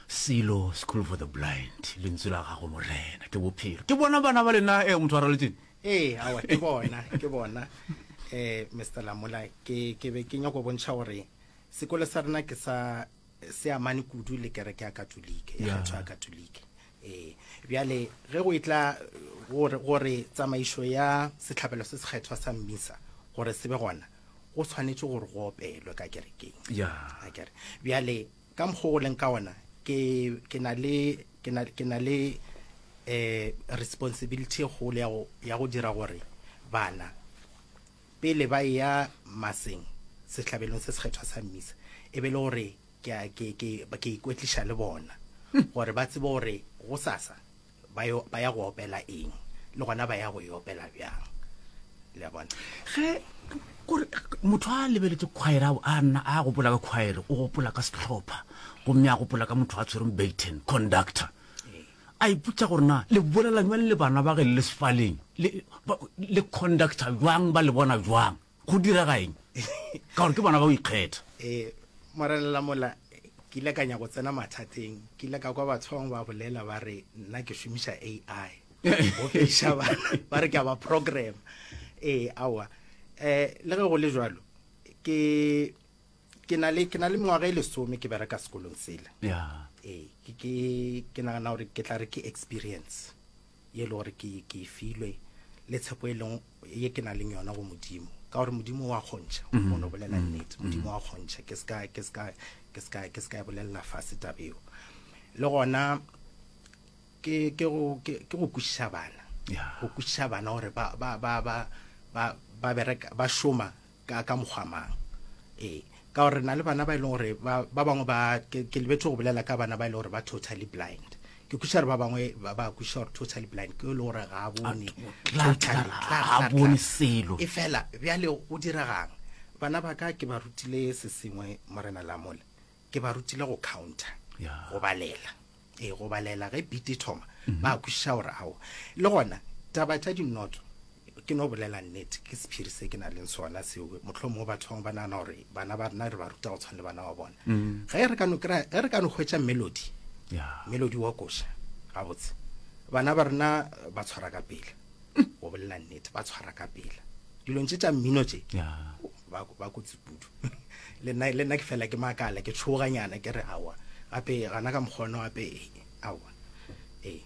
silo school for the blind lentswe la gago morena ke bophelo ke bona bana ba lena e motho a raletseng ee awa ke bona ke bona um mr lamola ke be ke nyako bontšha gore sekolo sa rena ke sa se amane kudu le kereke ya katolike ya kgetho ya katolike Ee, bjale ge go etla gore, gore tsamaišo ya sehlabelo se sekgethwa sa mmisa gore se be gona go tshwanetše gore go opelwe ka kerekeng ya akere bjale ka mokgwa go leng ka ona ke ke na le ke na ke na le eh responsibility e kgolo ya go ya go dira gore bana Pele ba eya maseng, sehlabelong se sekgethwa sa mmisa, e be e le gore ke a, ke, ke, ke a ikwetliša le bona, gore ba tsebe gore gosasa ba yo, ba ya go opela eng, le gona ba ya go e opela bjang. Le a bona? Ge, kore, motho a lebeletše khwaere, a, a nna, a gopola ka khwaere, o gopola ka sehlopha, gomme a gopola ka motho a tshwereng baton, conductor. A ipotša gore na le bolela bjang le bana ba ge le le sefaleng, le, ba, le conducta bjang, ba le bona bjang, go direga eng, ka gore ke bona ba o ikgetha. Ee, Morena, mola ke ile ka nyaka go tsena mathateng, ke ile ka kwa batho ba bangwe ba bolela, ba re nna ke šomiša AI, go feiša bana, ba re ke a ba programa. Ee, aowa, um le ge go le bjalo, ke. ke na le ke na le mengwaga e lesome ke bereka sekolong sele yeah. ee ke ke ke nagana gore ke tla re ke experience ye e le gore ke ke e filwe le tshepo e leng ye ke nang le yona go modimo ka gore modimo wa kgontšha mm-hmm. mono bolela mm-hmm. nnete modimo wa kgontšha ke ska ke ska ke ska ke ska e bolelela fa setabeo le gona ke ke go ke go kwišiša bana go kwišiša bana gore ba ba ba ba ba bereka ba shoma Ka, ka mokgwa mang? Ee, ka gore re na le bana ba e leng gore ba, ba bangwe ba, ke, ke lebetse go bolela ka bana ba e leng gore ba totally blind. Ke kwešiša gore ba bangwe ba, ba kwešiša gore totally blind ke yo e leng gore ga a bone. Tla- tla- tla- tla- ga a bone tla- selo. E fela, bjale go diregang? Bana ba ka ke ba rutile se sengwe, Morena Lamola. Ke ba rutile go counter, Ya. go balela. e go balela ge beat e thoma mhm. ba kwišiša gore ao le gona taba tša dinoto ke no bolela nnete ke sephiri se ke na leng sona seo motlho mongwe batho bangwe ba nagana gore bana ba rena re ba ruta go tshwana le bana ba bona mm. ge re kano kry ge re kano hwetsa melody melody wa koša gabotse bana ba rena ba tshwara ka pele go bolela nnete ba tshwara ka pela dilong tše tša mmino tše ba kotsi pudu le nna ke fela ke makala ke tshoganyana ke re awa gape gana ka mokgono gape awa ee